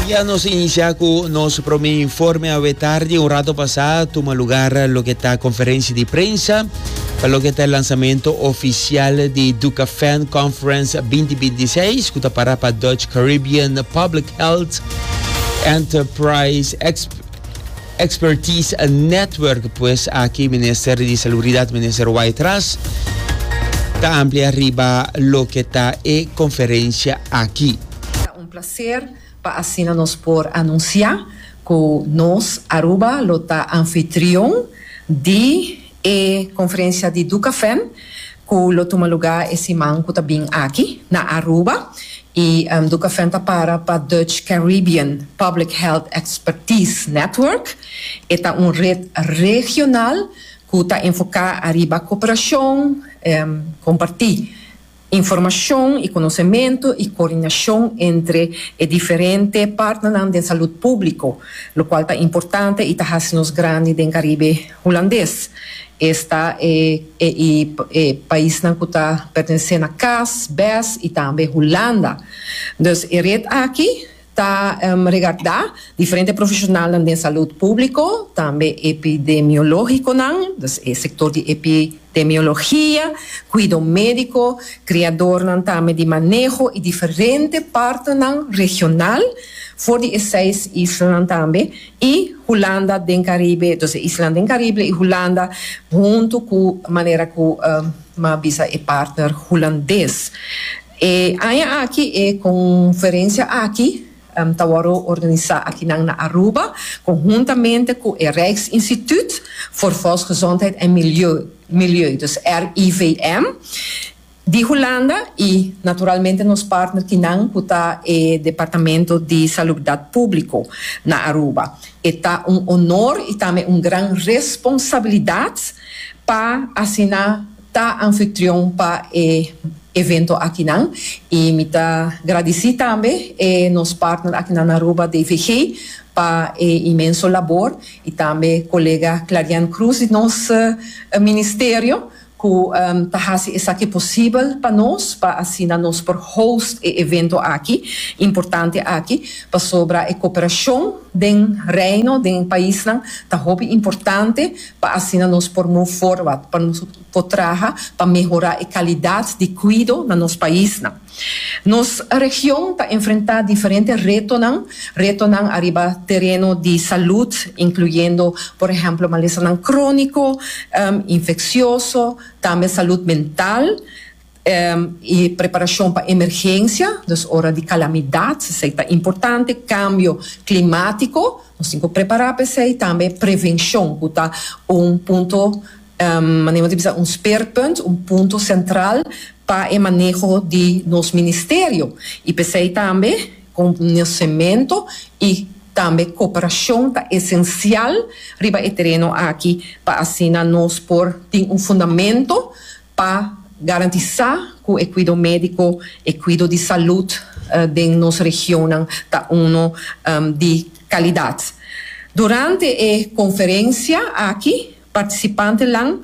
Ya nos a inicia cu nos prome informe awetardi. Un rato pasa tuma lugar loke ta conferencia di prensa pa loke ta e lanzamento oficial di Ducafan Conference binti binti i seis cu ta para pa Dutch Caribbean Public Health Enterprise Exp. Expertise Network pues aki Minister di Salubridad Minister Wytras ta amplia riba loke ta e conferencia aki. Ta un placer pa asina nos por anuncia cu nos Aruba lo ta anfitrion di. E conferencia di Ducafem cu lo tuma luga e siman cu ta bin aki na Aruba y Ducafem ta para pa Dutch Caribbean Public Health Expertise Network. E ta un red regional cu ta enfoca ariba cooperacion, comparti. Informashon i konosementu i koordinashon entre e diferente partnernan den salud públiko, lokual ta importante i ta hasi nos grandi den Karibe Hulandes. Esta e ei e paisnan ku ta pertenesé na cas, bes i tambe Hulanda. Dus e ret aki ta regardá diferente profeshonalnan den salud públiko, tambe epidemiológikonan, dus e sektor di epidemiologia, kuido médiko, kreadornan tambe di maneho i diferente partenan regional for di e seis islanan tambe i Hulanda den Karibe, dus e islanan den Karibe i Hulanda huntu ku manera ku mi a bisa e partner hulandes. E aña aki e conferencia aki ta worde organisa akinan na Aruba conhuntamente cu e Rijksinstituut voor Volksgezondheid en Milieu, dus RIVM, di Hulanda y naturalmente nos partner kinan cu ta e Departamento di Salubdad Publico na Aruba. E ta un honor y tambe un gran responsabilidad pa asina. ta anfitrion pa e evento akinan y mi ta gradici tambe e nos partner akinan na Aruba DVG pa e inmenso labor y tambe colega Clarian Cruz di nos Ministerio cu ta haci esaki posibel pa nos pa asina nos por host e evento aki importante aki pasobra e cooperacion den Reino den e paisnan ta hopi importante pa asina nos por move forward, pa nos por traha pa mehorá e kalidat di kuido na nos paisnan. Nos region ta enfrentá diferente retonan, retonan ariba tereno di salud, inkluyendo por ehèmpel malesanan króniko, infeksioso, tambe salud mental. E preparashon pa emergensia, dus ora di kalamidat, esei ta importante. Kambio klimatiko, nos tin ku prepará pa esei. Tambe prevenshon ku ta un punto, manera ta bisa un speerpunt, un punto sentral pa e maneho di nos ministerio. I p'esei tambe konosementu i tambe koperashon ta esensial riba e tereno aki pa asina nos por tin un fundamentu. Pa garantisá ku e kuido médiko, e kuido di salud den nos regionnan ta unu di kalidat. Durante e konferensia aki partisipantenan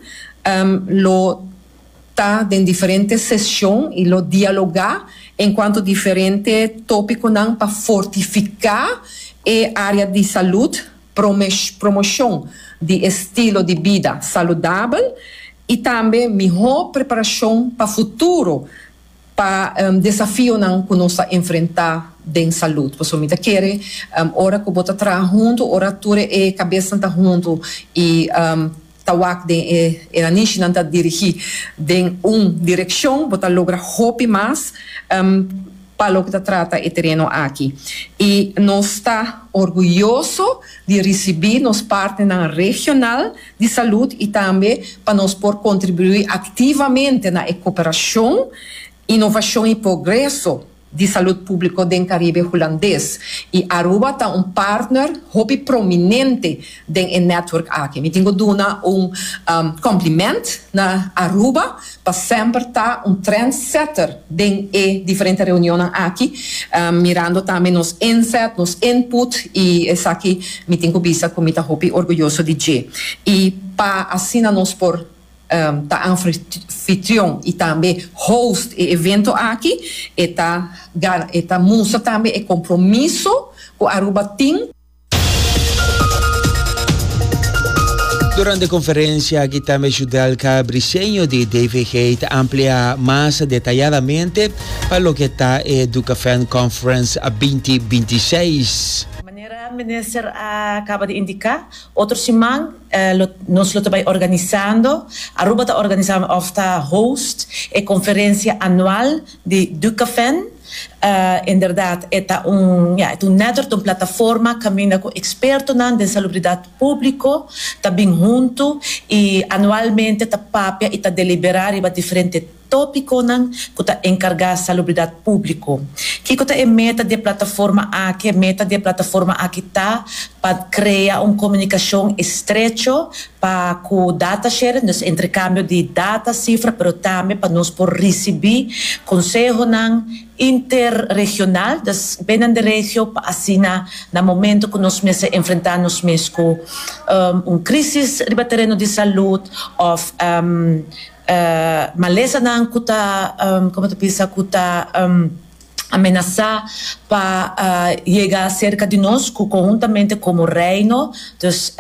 lo ta den diferente seshon i lo dialogá en kuanto diferente tópikonan pa fortifiká e área di salud promoshon di estilo di bida saludabel i tambe mihó preparashon pa futuro pa desafionan ku nos ta enfrentá den salud. Pasobra mi ta kere ora ku bo ta traha huntu, ora tur e kabesnan ta huntu i. Ta wak den e e anishi nan ta dirigi den un direccion bo ta logra hopi mas pa loke ta trata e tereno aki y nos ta orguyoso di ricibi nos partnernan regional di salud y tambe pa nos por contribui activamente na e cooperacion, innovacion y progreso di salud público den Caribe Hulandes y Aruba ta un partner hopi prominente den e network aki. Mi tin cu duna un compliment na Aruba pa semper ta un trendsetter den e diferente reunionnan aki, mirando tambe nos inzet, nos input y esaki mi tin cu bisa cu mi ta hopi orguyoso di dje. Y pa asina nos por. ta anfitrion y tambe host e evento aki e ta e ta mustra tambe e compromiso cu Aruba tin. Durante e conferencia aki tambe Judelka Briceño di DVG ta amplia mas detayadamente pa loke ta e Ducafan Conference binti binti seis. Manera Minister a caba di indica, Otro siman nos lo ta bai organisando, Aruba ta organisá òf ta host e konferensia anual di Ducafen. Inderdat e ta un, ya, e ta un network, ta un plataforma kaminda ku ekspertonan den salubridat públiko ta bin huntu i anualmente ta papia i ta deliberá riba diferente. Tópikonan ku ta enkargá salubridat públiko. Kiko ta e meta di e plataforma aki? E meta di e plataforma aki ta pa krea un komunikashon estrecho pa ku data sharing, dus entrekambio di data, sifra, pero tambe pa nos por risibí konsehonan interregional, dus binnen di regio, pa asina na momento ku nos mester enfrentá nos mes ku un krísis riba tereno di salud òf. E malesanan ku ta komo ta bisa ku ta amenasá pa yega serka di nos ku konhuntamente komo Reino dus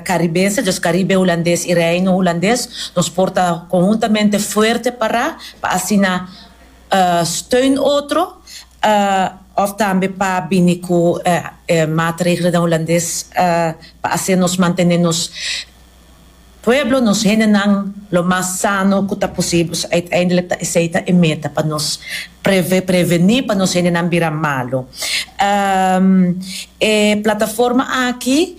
Karibense dus Karibe Hulandes i Reino Hulandes nos por ta konhuntamente fuerte pará pa asina steun otro òf tambe pa bini ku e maatregelnan Hulandes pa haser nos mantené nos Pueblo nos hendenan lo mas sano cu ta posibel. Uiteindelijk ta esey ta e meta pa nos preve, preveni pa nos hendenan bira malo. E plataforma aki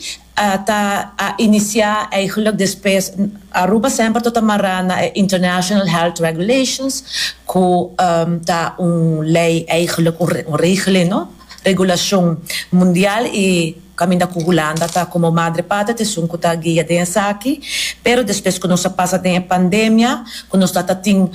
ta a inicia eigenlijk despues, Aruba semper ta ta mara na e International Health Regulations cu ta un ley eigenlijk, un regeling no, regulacion mundial y Kaminda ku Hulanda ta komo madre patria ta esun ku ta guia den esaki, pero despues ku nos a pasa den e pandemia, ku nos ta ta tin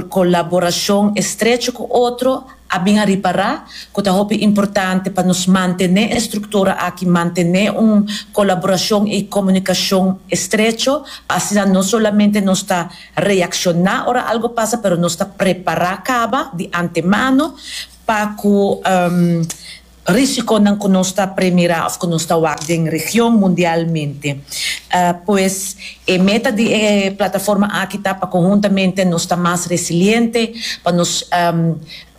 kolaborashon estrecho ku otro, a bin a ripará ku ta hopi importante pa nos mantené e struktura aki, mantené un kolaborashon i komunikashon estrecho, pa asina no solamente nos ta reakshoná ora algu pasa, pero nos ta prepará kaba di antemano pa ku. Risikonan ku nos ta premirá òf ku nos ta wak den region mundialmente. Pues, e meta di e plataforma aki ta pa konhuntamente nos ta mas resiliente, pa nos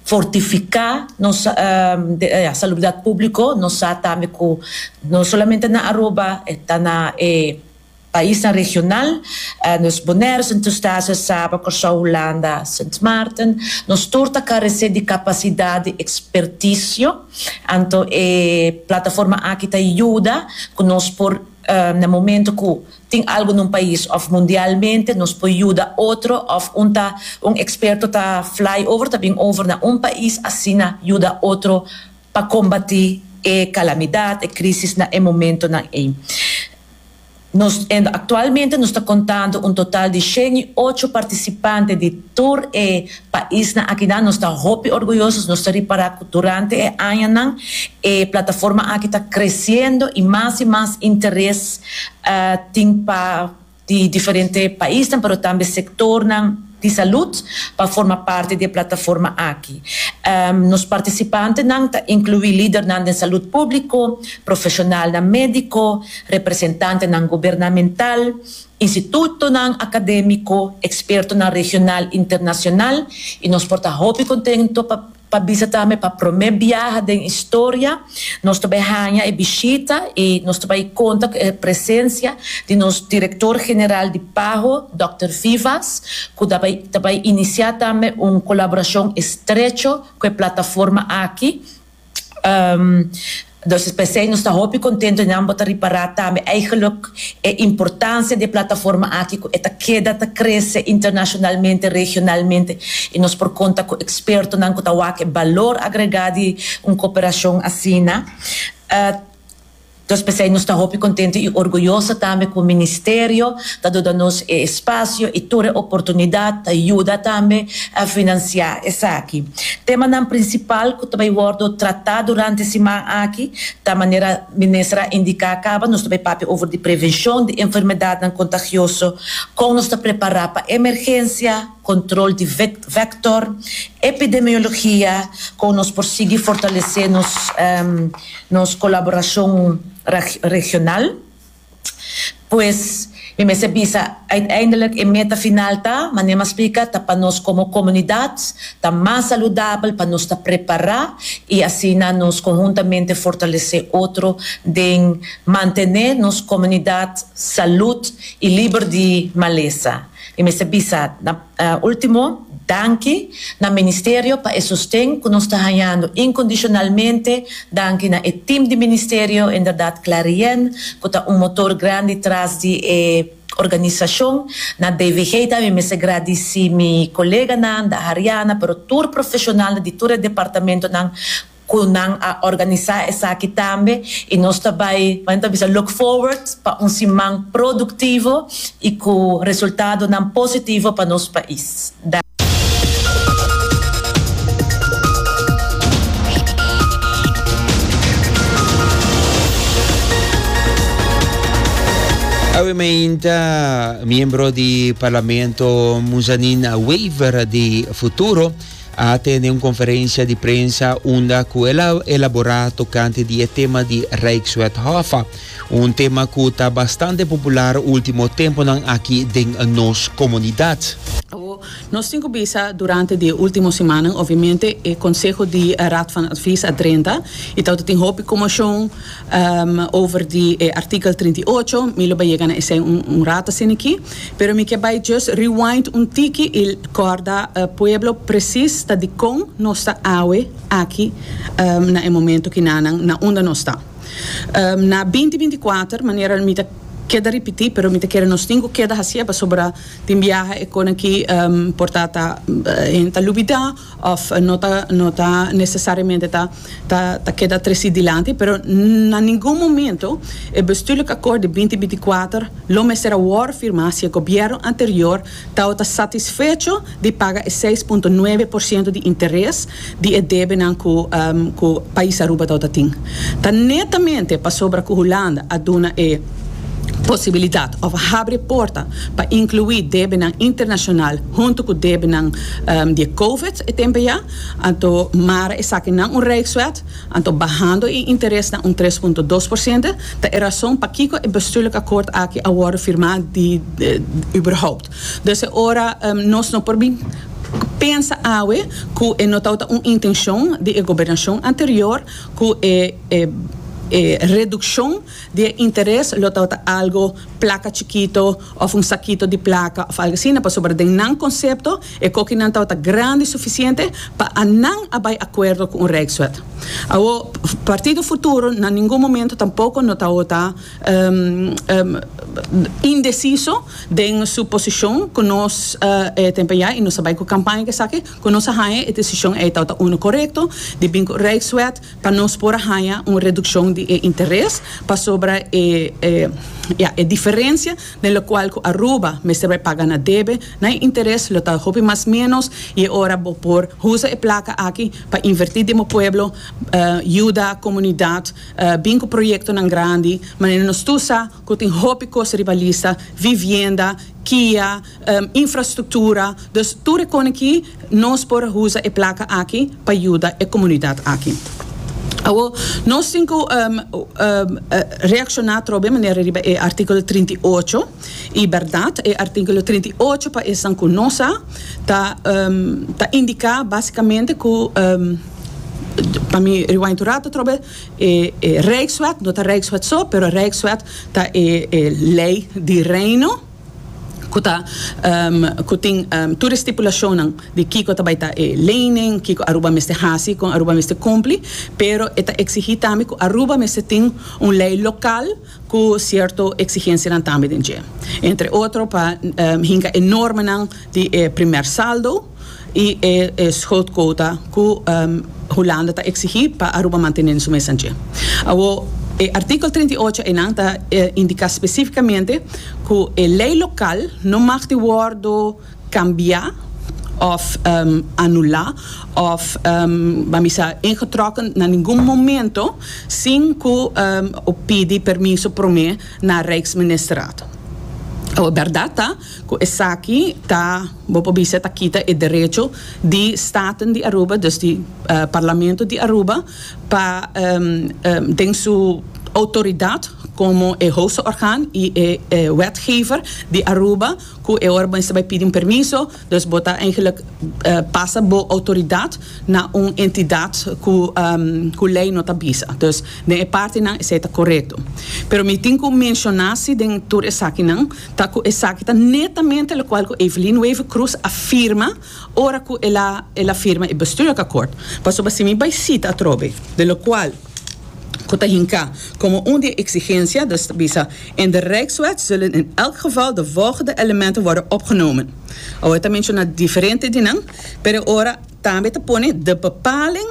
fortifiká nos salubridat públiko. Nos sa tambe ku no solamente na Aruba, ta na e. Paisnan regional, nos Bonaire, Sint Eustatius, Saba, Kòrsou, Hulanda, Sint Maarten, nos tur ta karesé di kapasidat di ekspertisio, anto e plataforma aki ta yuda ku nos por na momentu ku tin algu na un pais òf mundialmente nos por yuda otro òf un ta un eksperto ta fly over ta bin over na un pais asina yuda otro pa kombatí e kalamidat, e krísis na e momentunan ei. Nos enda aktualmente nos ta kontando un total di shen i ocho partisipante di tur e paisnan aki nan. Nos ta hopi orguyoso, nos ta ripará ku durante e añanan e plataforma aki ta kresiendo i mas i mas interes tin pa di diferente paisnan, pero tambe sektornan. di salud pa forma parti di e plataforma aki. Nos participantenan ta inclui lidernan den salud publico, profesionalnan medico, representantenan gubernamental, institutonan academico, expertonan regional y internacional y nos por ta hopi contento pa Pa bisa tambe pa promé biaha den historia nos ta bai haña e bishita i nos ta bai konta ku e presensia di nos Direktor General di Paho, Dòkter Vivas, ku ta bai ta bai inisiá tambe un kolaborashon estrecho ku e plataforma aki. Entonces p'esei nos ta hopi contento di nan bo ta ripara tambe eigenlijk e importancia di e plataforma aki cu e ta keda ta crece internacionalmente, regionalmente y nos por conta cu expertonan cu ta wak e balor agrega di un cooperacion asina. Entonces p'esei nos ta hopi contento y orguyoso tambe cu Ministerio ta duda nos e espacio y tur e oportunidad ta yuda tambe financia esaki. Temanan prinsipal ku ta bai wòrdu tratá durante siman aki ta manera Minister a indiká kaba, nos ta bai papia over di prevenshon di enfermedatnan kontagioso, kon nos ta prepará pa emergensia, kontrol di vektor, epidemiologia, kon nos por sigui fortalesé nos kolaborashon regional. Pues, mi mester a bisa, uiteindelik e meta final ta, manera m'a splika, ta pa nos komo komunidat ta mas saludabel, pa nos ta prepará i asina nos konhuntamente fortalesé otro den mantené nos komunidat salud i liber di malesa. Mi mester a bisa, na. Ultimo, danki na Ministerio pa e sosten ku nos ta hañando inkondishonalmente. Danki na e tim di Ministerio, inderdat Klarien ku ta un motor grandi tras di e organisashon. Na DVG ta mi mester gradisí mi koleganan, Dahariana, pero tur profeshonalnan di tur e departamentonan cu nan a organisa esaki tambe y nos ta bay, como nan ta bisa, look forward pa un siman productivo y cu resultadonan positivo pa nos pais. Awe mainta miembro di Parlamento Muzanin a waver di futuro. a tende un konferensia di prensa unda ku el a elaborá tokante di e tema di Rijkswet Hoffa, un tema ku ta bastante popular último tempunan aki den nos komunidat. Ku nos tin ku bisa durante di e último simannan, obviamente e konseho di Raad van Advies a drenta i ta ota tin hopi komoshon. over di e artikel trinta i ocho, mi lo bai yega na esei un rato asin'aki, pero mi ke bai just rewind un tiki i kòrda pueblo presis ta dikon nos ta awe aki na e momento kinanan na unda nos ta. Na binti binti i kuater, manera mi ta keda ripití pero mi ta kere nos tin ku keda hasié pasobra tin biaha e konanki por ta ta hende ta lubidá, Of no ta no ta necesariamente ta ta ta keda tres di dilanti, pero na ningun momento e bestuurlijk akkoord di binti binti kuater lo mester a wor firmá si e gobièrnu anterior ta o ta satisfecho di paga e seis punto nuebe por siento di interes di e debenan ku ku Pais Aruba ta o ta tin. Ta netamente pasobra ku Hulanda a duna e posibilidat òf habri e porta pa inkluí debenan internashonal huntu ku debenan di e covid e tempe ya, anto mara esakinan un rijkswet, anto bahando e interes na un tres punto dos por siente, ta e rason pakiko e bestuurlijk akkoord aki a wòrdu firmá überhaupt. Dus e ora nos no por bin pensa awe ku e no tabata un intenshon di e gobernashon anterior ku e redukshon. Di e interes lo tabata algo plaka chikito òf un sakito di plaka òf algo asina pasobra den nan konsepto e kokinan tabata grandi sufisiente pa a nan a bai akuerdo ku un rijkswet. Awo Partido Futuro na ningun momento tampoko no tabata indesiso den su posishon ku nos e tempo ya i nos a bai ku kampaña ku esaki ku nos a haña e desishon ei tabata uno korekto di bin ku rijkswet pa nos por a haña un redukshon di e interes pasobra e ya e diferensia den lokual ku Aruba mester bai paga na debe na e interes lo ta hopi mas ménos i e ora bo por usa e plaka aki pa invertí den bo pueblo yuda komunidat bin ku proyektonan grandi manera nos tur sa ku tin hopi kos riba lista vivienda kia. infrastruktura, dus tur e koneki nos por a usa e plaka aki pa yuda e komunidat aki. Awo nos tin ku reakshoná trobe manera riba e artíkulo trinta i ocho i bèrdat e artíkulo trinta i ocho pa esnan ku no sa ta ta indiká basikamente ku pa mi rewind un rato trobe e e rijkswet no ta rijkswet so pero rijkswet ta e e lei di reino. ku ta ku tin tur e stipulashonnan di kiko ta bai ta e leynan, kiko Aruba mester hasi, kon Aruba mester kumpli, pero e ta eksigí tambe ku Aruba mester tin un lei lokal ku sierto eksigensianan tambe den dje. Entre otro pa hinka e normanan di e primer saldo. i e schuldquota ku Hulanda ta eksigí pa Aruba mantené su mes anchi. Awor, e artíkel treinta i ocho einan ta indiká spesífikamente ku e lei lokal no mag di wòrdu kambiá òf anulá òf ban bisa ingetrokken na ningun momento sin ku pidi permiso promé na Rijksministerraad. Awor, bèrdat ta ku esaki ta. Bo por bisa ta kita e derecho di Staten di Aruba, dus di Parlamento di Aruba, pa den su outoridat komo e hoogste orgaan i e wetgever di Aruba ku e ora bo mester bai pidi un permiso, dus bo ta eigenlik pasa bo outoridat na un entidat ku lei no ta bisa. Dus den e partinan esei ta korekto. Pero mi tin ku menshona si den tur esakinan Ta cu esaki ta netamente locual cu Evelyn Wever Croes a firma ora cu el a el a firma e bestuurakakkoord. Pasobra si mi bay cita atrobe de locual cu ta hinca como un di e exigencia, dus ta bisa, In de Rijkswet zullen in elk geval de volgende elementen worden opgenomen. Awor e ta menciona diferente di nan, pero e ora tambe ta pone de bepaling.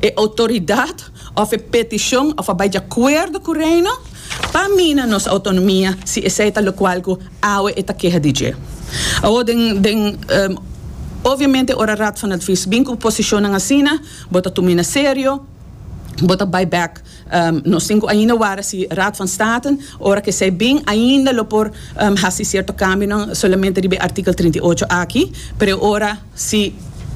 e outoridat òf e petishon òf a bai di akuerdo ku Reino pa mina nos outonomia si esei ta lokual ku awe e ta keha di dje. Awor den den Obviamente ora Raad van Advies bin ku posishonnan asina bo ta tumina serio, bo ta bai bèk. Nos tin ku ainda wara si Raad van State ora ku esei bin ainda lo por hasi sierto kambionan solamente riba e artikel trinta i ocho aki, pero ora. Si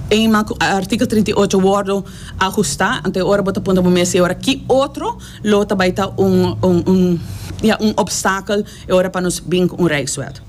eenmaal cu artikel trinta i ocho wordo ajusta, anto e ora bo ta puntra bo mes e ora, ki otro lo ta bay ta un un ya un obstakel e ora pa nos bin cu un Rijkswet?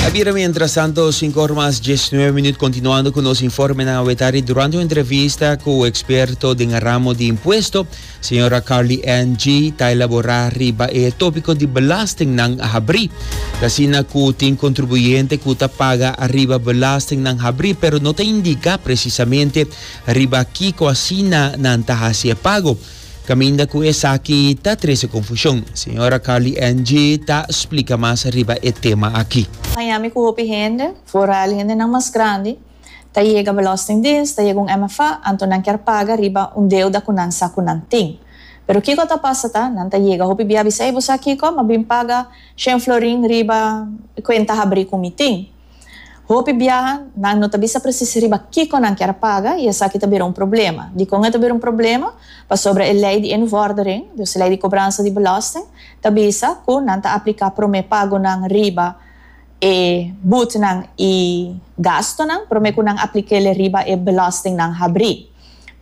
Ta bira mientras tanto sinku or mas diesnuebe minuut continuando cu nos informenan. Awe tardi durante un entrevista cu experto den ramo di impuesto, Señora Carly Ann Gee ta elaborá riba e tópiko di belastingnan habrí. Ta asina ku tin kontribuyente ku ta paga riba belastingnan habrí pero no ta indiká presisamente riba kiko asina nan ta hasi e pago, kaminda ku esaki ta trese konfushon. Señora Carly Ann Gee ta splika mas riba e tema aki. Miami ku hopi hende, foral hendenan mas grandi. Ta yega Belastingdiens, ta yega un MFA, anto nan kier paga riba un deuda ku nan sa ku nan tin. Pero kiko ta pasa ta, nan ta yega hopi bia bisa, ey bo sa kiko, m'a bin paga shen florin riba e kuenta habrí ku mi tin. Hopi biaha nan no ta bisa presis riba kiko nan kier paga i esaki ta bira un problema. Dikon e ta bira un problema? Pasobra e lei di Invordereng, dus e lei di kobransa di belasting, ta bisa ku nan ta apliká promé pagonan riba e boetenan i gastonan promé ku nan aplikéle riba e belòsting nan habrí.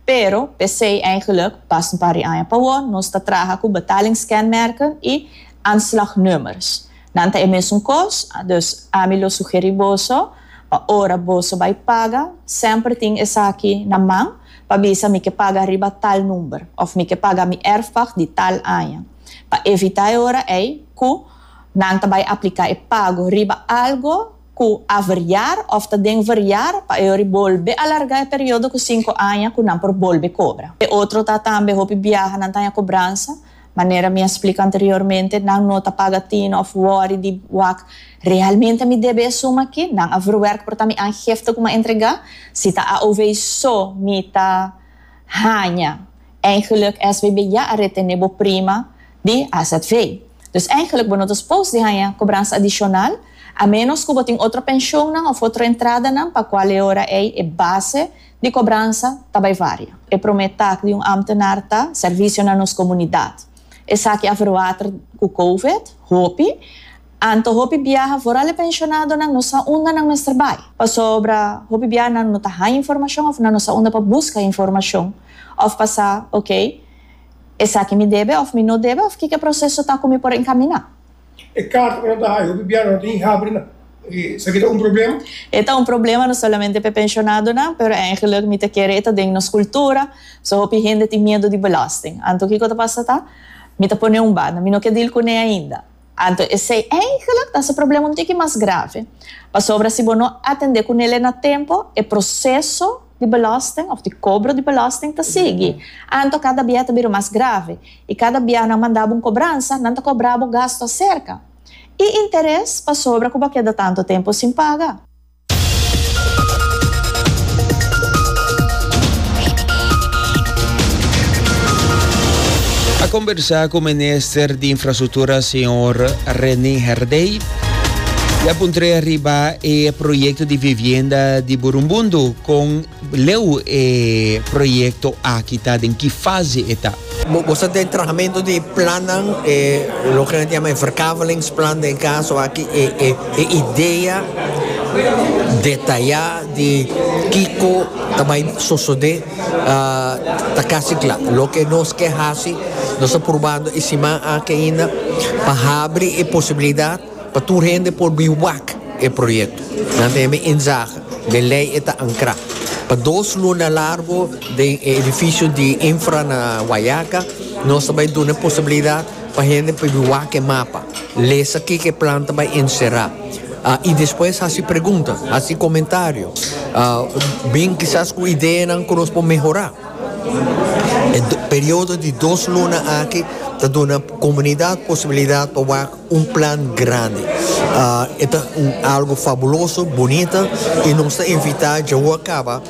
Pero p'esei eigenlik pas un par di aña pa wò nos ta traha ku betalingskenmerken i aanslagnummers. Nan ta e mesun kos, dus ami lo sugerí boso pa ora boso bai paga semper tin esaki na man pa bisa mi ke paga riba tal number òf mi ke paga mi erfpag di tal aña pa evitá e ora ei ku Nan ta bai apliká e pago riba algu ku a veriar òf ta den veriar pa e ori bolbe alargá e periodo ku sinku aña ku nan por bolbe kobra. E otro ta tambe hopi biaha nan ta haña kobransa, manera mi a splika anteriormente, nan no ta paga tin òf wòri di wak realmente mi debe e suma aki, nan a verwerk por ta mi aangifte ku mi a entregá. Si ta AOV so mi ta haña, eigenlik SBB ya a retené bo prima di AZV. Dus eigenlik bo no ta spos di haña kobransa adishonal, a ménos ku bo tin otro penshonnan òf otro entradanan pa kua e ora ei e base di kobransa ta bai varia. E promé tak di un ámtenar ta servisio na nos komunidat. Esaki a verwater ku kouvet, hopi. Anto hopi biaha for al e penshonadonan no sa unda nan mester bai. Pasobra hopi biaha nan no ta haña informashon òf nan no sa unda pa buska informashon òf pa sa, oké. Esaki mi debe of mi no debe of kiko e proseso ta ku mi por enkamina? E karta ku nan ta haña hopi biaha no ta tin habri na esaki ta un problema? E ta un problema no solamente pa e penshonadonan, pero eingelik mi ta kere e ta den nos kultura, so hopi hende tin miedu di belosting. Anto kiko ta pasa ta? Mi ta pone un banda, mi no ke dil kuné ainda. Anto esei eindelijk ta hasi problema un tiki mas grave, pasobra si bo no atende ku nele na tempo, e proseso di belasting òf di kobro di belasting ta sigui. Anto kada bia ta bira mas grave, i kada bia nan manda bo un kobransa, nan ta kobra bo gastu aserka i interes pasobra ku bo a keda tantu tempu sin paga. A conversa cu minister di infrastructura señor Rene Herdey y a puntre riba e proyecto di vivienda di Burumbundu con Leu e proyecto aki ta den ki fase e ta? Bo sa den trahamentu di plannan e loke nan ta yama e verkavelingsplan den kaso aki e e idea detayá di kiko ta bai sosodé ta kasi kla. Loke nos ke hasi nos ta probando e siman aki ainda pa habri e posibilidat Pa tur hende por bin wak e proyekto. Nan ta hebe inzaga den lei e ta ankrá pa dos luna largo den e edifisio di infra na Guayaca. Nos ta bai duna e posibilidat pa hende por bin wak e mapa, lesa kiko e plan ta bai enserá i despues hasi pregunta, hasi komentario, bin kisas ku ideanan ku nos por mehorá. E periodo di dos luna aki ta duna komunidat posibilidat pa wak Un plan grandi. E ta un algo fabuloso, bunita y nos ta invita djawoa caba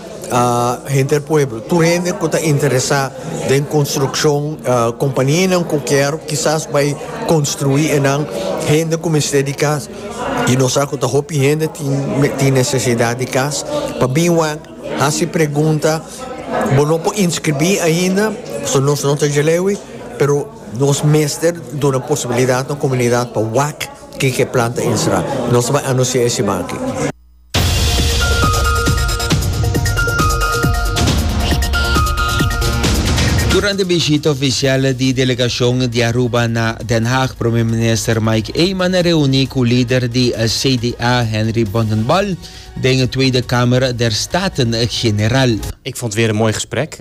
henter e pueblo, tur hende cu ta interesa den construccion, companianan cu kier kisas bay construi enan, hende cu mester di cas y nos sa cu ta hopi hende tin necesidad di cas, pa bin wak haci pregunta, bo no por inscribi ainda pasobra nos no ta djalewi pero. Nos mester duna posibilidat nos komunidat pa wak kin ke planta insra. Nos bai anunsiá e siman aki. Durante bishita ofisial di delegashon di Aruba na Den Haag, Prome Minister Mike Eman a reuní ku lider di CDA, Henry Bontendal, den Tweede Kamer der Staten-General. Ik vond het weer een mooi gesprek.